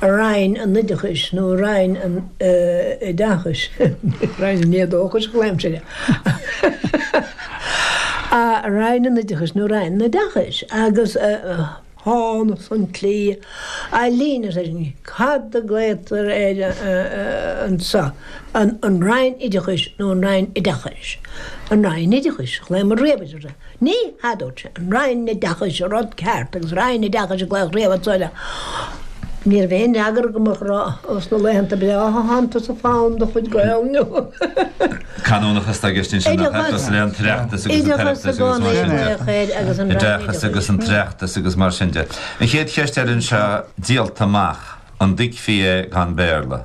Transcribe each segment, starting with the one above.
an Roinn Oideachais nó Roinn an Oideachais, Roinn an Éadóchais, a ghlaoimse air, Roinn an Oideachais nó an Roinn Oideachais, agus thángthas an tslí a leanas air sin, cad a ghlaotar air anso, an Roinn Oideachais nó an Roinn Oideachais? An Roinn Oideachais, a ghlaomar riamh air. Ní dúirt sé, an Roinn Oideachais, an rud ceart, agus Roinn Oideachais a glaodh riamh anso le Ní raibh aon fhreagra go moch ará Ó sna laethanta breátha san sa fonn de chuid Gael. Canúnachas atá i gceist ansin, nach ea? Cosúil leis an tOireachtas agus an tOireachtas agus mar sin de. Oideachas agus an tOireachtas agus mar sin de. An chéad cheist eile anseo, díolta amach, an dtuigfí é gan Béarla?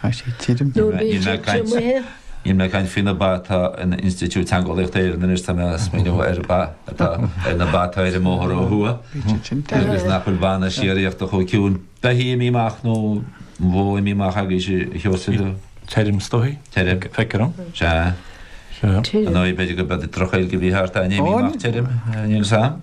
Tá sé tirim. Níl mé ag caint níl mé ag caint faoi na ba atá in Institiúid Teangeolaíochta Éireann anois, tá mé ag smaoineamh ar ba atá ar na ba atá ar an mbóthar ó thuaidh agus nach bhfuil bainne síoraíochta chomh ciúin. Beithígh imithe amach nó bó imithe amach agaibhse a Sheosaimh. Tirim is dóigh. Tirim. Feictear dom. Sea. Sea. Ar ndóigh b'fhéidir go b'fhéidir drochghaeilge a bhí thart ann, imithe amach tirim, níl 's 'am.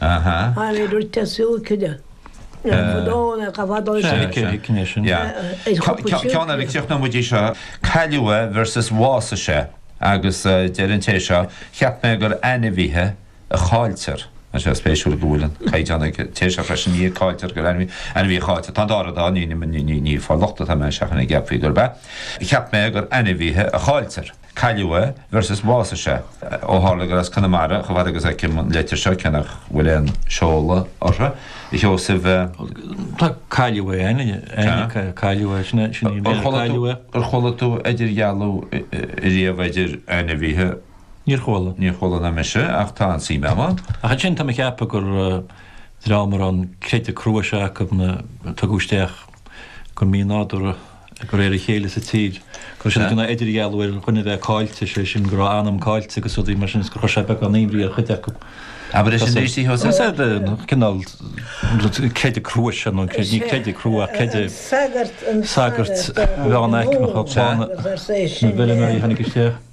Aha. An bhfuil rud le súil cinn? Dóna go bhfad ó sin. Cé hic cinne sin? Ceann eile críoch na muidí seo. Cailleadh é versus bhásaigh sé. Agus deir an té seo, cheap mé gur ainmhithe a chailltear. Tá sé spéisiúil go bhfuil an caighdeán ag an té seo freisin, ní a cailltear gur ainmhithe a chailltear. Tá an dá rud ann, ní ag fáil locht atá mé ar fhaitíos go gceapfaí gurb ea. Cheap mé gur ainmhithe a chailltear. Cailleadh é, versus bhásaigh sé, ó tharla gur as Conamara, chomh fada agus a fheicim an leitir seo, cé nach bhfuil aon seoladh uirthi, a Sheosaimh. Tá cailleadh é, ainm Tá. cailleadh é, sin é, sin é, Ar chuala tú, ar chuala tú idirdhealú riamh idir ainmhithe? Níor chuala. Níor chuala ná mise, ach tá an suim agam ann. Ach ansin tá mé ag ceapadh gur dream a raibh an creideamh crua seo acu, na, a tugadh isteach, go mínádúrtha, de réir a chéile sa tír, gur sin a dhéanadh idirdhealú, bhuel, dhuine a bheith caillte, sé sin go raibh a anam caillte agus rudaí mar sin agus gur chuir sé beagán aimhris ar chuid acu. Abair é sin arís, a Sheosaimh. Sea, cineál creideamh crua sin, nó ní creideamh crua ach creideamh sagairt mheánaicme a tháinig, na bhfeirmeoirí a tháinig isteach.